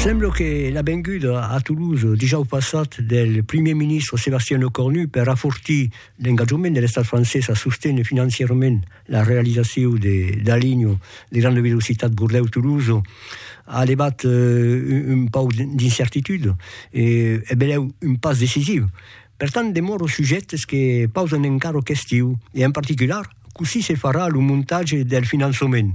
Sembla que la venguda a Toulouse dijòus passat del primièr ministre Sébastien Lecornu per afortir l'engatjament de l'estat francés a sostener financièrament la realizacion de la linha de granda velocitat Bordèu-Toulouse a levat eh, un pauc d'incertitude e e benlèu un pas decisiu. Per tant, demòra o sujèctes que pausan encara questiu e en particular cossí se farà lo montatge del finançament.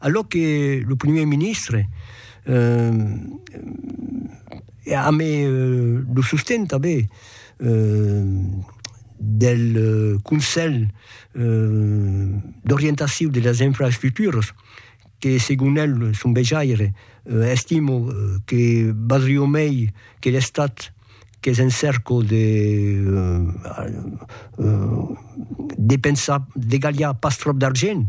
A lo que lo primièr ministre eh, a me lo sosten tanben eh, del Conselh d'orientaciu de las infraestructuras, que segon el, son vejaire, estimo que valdrió mei que l'Estat qu'es en cèrco de depensar, degalhar pas tròp d'argent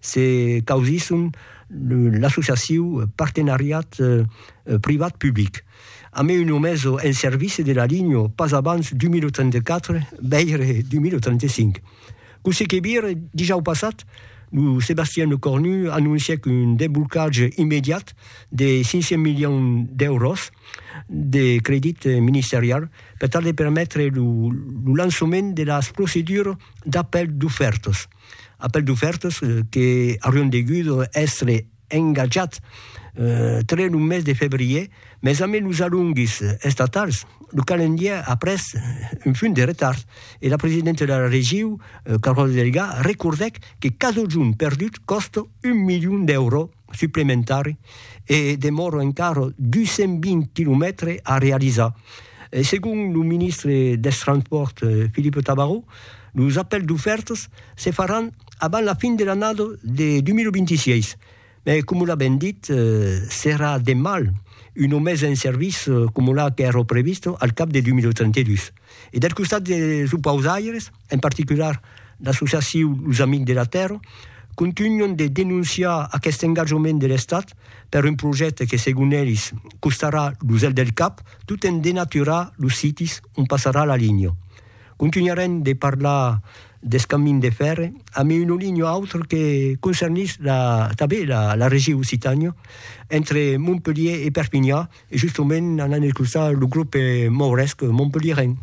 se causisson l'associaciu Partenariat Privat Public. A me un omés en servici de la linho pas abans 2084, veire 2085. Cossí que vire, dijau passat, lo Sébastien Lecornu anoncièc un desblocatge immediat de 500 milions d'èuros de credit ministerial per tal de permetre lo lançament de las procedures d'apèl d'ofèrtas. Apèl d'ofèrtas que aurián degut èstre engatjats tre lo mes de febrièr, mes amé los alonguis estatals, lo calendièr a pres un funt de retard e la presidenta de la regiu, Caròla Delgà, recordèc que cadun perdut còsta un milion d'èuro. suplementari e demòra encara 220 quilomètres a realizar. Segon lo ministre dels Transpòrts, Philippe Tabarot, los apèls d'ofèrtas se faràn abans la fin de l'annada de 2026, mas coma l'a ben dit, serà de mal una mesa en serviç coma la qu'èra prevista al cap de 2032. E del costat dels opausaires? En particular, l'associaciu Los Amics de la Tèrra contunhon de denonciar aqueste engatjament de l'Estat per un projècte que, segon elis, costarà lo zel del cap tot en denaturar los sites ont passarà la linha. Contunharem de parlar deth camin de fèrre amb un olinho a autre que concernís tanben la regiu Occitània, entre Montpelhier e Perpinhan, e justement anant escoltar lo grup mauresc Montpelhierenc.